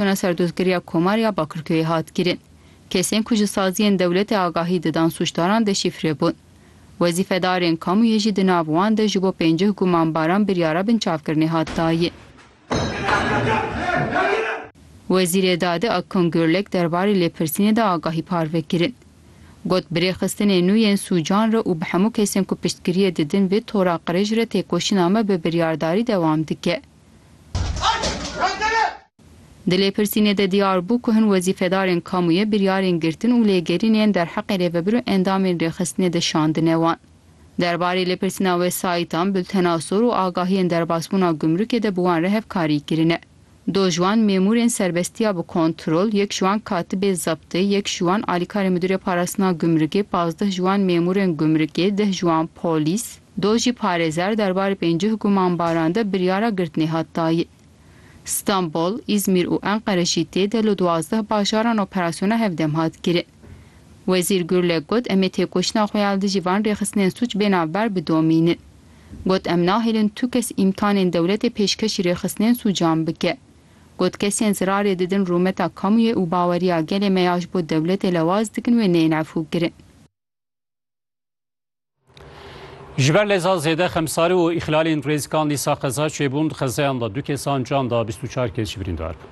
Tona serdozgeriya Komar ya Bakirköyê hat kirin. Kesên ku ji saziyên dewletê agahî didan sûcdaran deşîfre bûn. Wezîfedarên kamuyê jî di nav wan de ji bo pêncih gumanbaran biryara binçavkirinê hat dayin. Wezîrê Dadê Akgün Gürlek derbarê lêpirsînê de agahî parve kirin. Got bi rêxistinê nû yên sûcan re û bi hemû kesên ku piştgiriyê didin vê tora qirêj re têkoşîna me bi biryardarî dewam dike. Di lêpirsînê de diyar bû ku hin wezîfedarên kamûyê biryarên girtin û lêgerînê yên derheqê rêvebir û endamên rêxistinê de şandine wan. Derbarê lêpirsîna wesayîtan, bultena sor û agahiyên derbasbûna gumrukê de bi wan re hevkarî kirine. Do ji wan mêmûrên serbestiya bi kontrol, yek ji wan katibê zebtê, yek ji wan alîkarê midûrê parastina gumrukê, pazdeh ji wan mêmûrên gumrukê, deh ji wan polîs, Do jî parêzer derbarê pêncih gumanbaran de biryara girtinê hat dayin. Stenbol, Îzmîr û Enqere jî tê de li duwazdeh bajaran operasyona hevdem hat kirin. Wezîr Gurlek got em ê têkoşîna xwe ya li dijî van rêxistinên sûc bê navber bidomînin. Got em nahêlin tu kes îmkanên dewletê pêşkêşî rêxistinên sûcan bike. Got kesên zirarê didin rûmeta kamûyê û baweriya gelê me ya ji bo dewletê lewaz dikin wê neyên efûkirin. Ji ber leza zêde xemsarî û îxlalên rêzkan dîsa qeza çêbûn di xezeyan de du kesan can da bîst û çar kes jî birîndar bûn.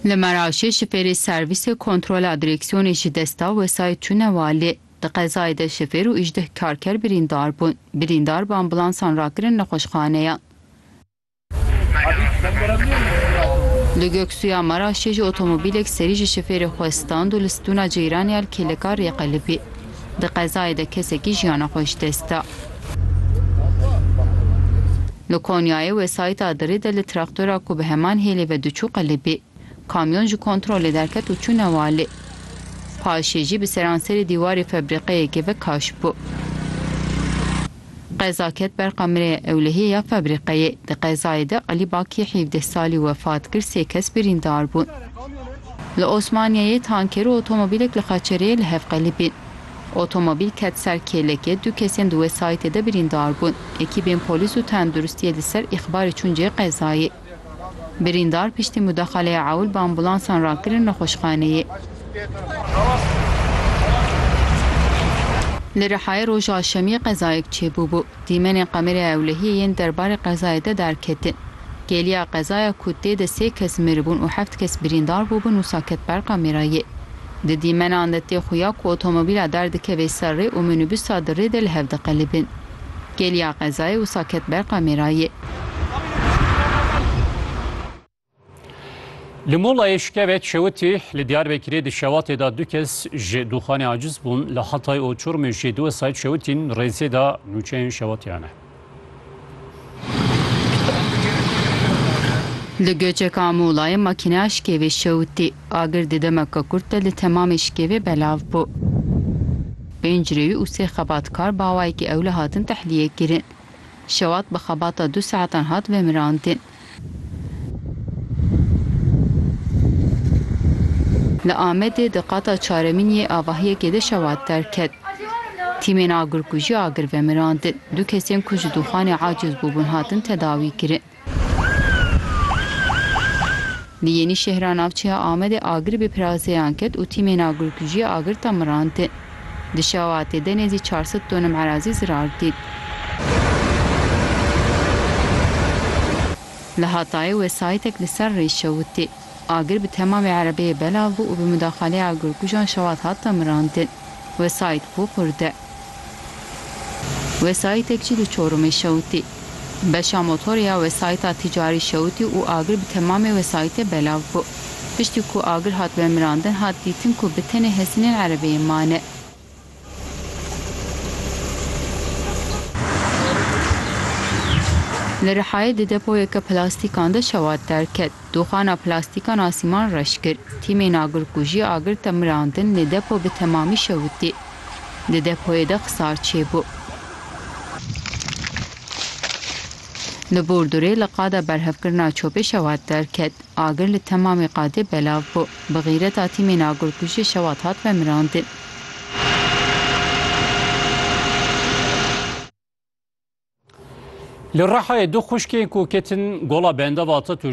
Li Meraşê şifêrê servîsê kontrola direksiyonê ji desta wesayît çûne walê. Di qezayê de şifêr û îşdeh karker birîndar bûn. Birîndar bi ambulansan rakirin nexweşxaneyan. Li Göksuya Maraşê ji otomobîlek serî ji şifêrê xwe stand û li stûna ceyranê ya li Kêleka Rêqelibê di qezayê de kesekî jiyana xwe ji dest da. Li Konyayê wesayîta Dirê de li traktora ku bi heman hêlê ve diçû qelibê, kamyon ji kontrolê derket û çû newalê. Paşê jî bi seranserê dîwarê febrîqeyekê ve kaş bû. Qeza ket ber kamereya ewlehiyê ya febrîqeyê. Di qezayê de Elî Bakî hîvdeh salî wefat kir, sê kes birîndar bûn. Li Osmaniyeyê tanker û otomobîlek li xeçereyê li hev qelibîn. Otomobîl ket ser kêlekê, du kesên di wesayîtê de birîndar bûn. Ekîbên polîs û tenduristiyê li ser îxbarê çûn cihê qezayê. Birîndar piştî mudaxaleya ewil bi ambulansan re kirin nexweşxaneyê. Li Rihayê roja şemiyê qezayek çêbûbû. Dîmenên kameraya ewlehiyê yên derbarê qezayê de derketin. Geliya qezaya ku tê de sê kes miribûn û heft kes birîndar bûbin wisa ket ber kamerayê. Di dîmenan de tê xuya ku otomobîla derdikevê ser rê û minîbusa di rê de li hev diqelibin. Gêliya qezayê wisa ket ber kamerayê. Li molayê şikevek şewitî li Diyarbekirê di şewatê de du kes ji doxanê aciz bûn, li Hatay û Çorumê jî du wesayît şewitîn, rêzê de nûçeyên şewatiyan e. Li Göçeka Muğlayê makîneya şikêvê şewitî. Agir di demeke kurt de li temamê şikêvê belav bû. Pênc rêwî û sê xebatkar bi awayekî ewle hatin tehliyekirîn. Şewat bi xebata du saetan hat vemirandin. Li Amedê di qata çaremîn yê avahiyekê de şewat derket. Tîmên agirkujî agir vemirandin. Du kesên ku ji dûxanê acîz bûbûn hatin tedawîkirin. Li Yenîşehra navçeya Amedê agir bi pirazeyan ket û tîmên agirkujî agir ta mirandin. Di şewatê de nêzî çar sed tonim erazî zirar dîn. Li Hatayê wesayîtek li ser rê şewitî. Agir bi temamê erebeyê belav bû û bi mudaxaleyê agirkujan şewat hat ta mirandin. Wesayît ku kurd e. Wesayîtek jî di Çorumê şewitî. Beşa motorê ya wesayîta tîcarî şewitî û agir bi temamê wesayîtê belav bû. Piştî ku agir hat vemirandin hat dîtin ku bi tenê hesînên erebê yên mane. Li Rihayê di depoyeke plastîkan de şewat derket. Doxana plastîkan a Sîman reş kir. Tîmên agirkujî agir te mirandin lê depo bi temamî şewitî. Di depoyê de xisar çêbû. Li Bordûrê li qada berhevkirina çopê şewat derket. Agir li temamê qadê belav bû. Bi xîreta tîmên agirkujî şewat hat vemirandin. Li Rihayê du xwişkên ku ketin gola bendava Atatürkê,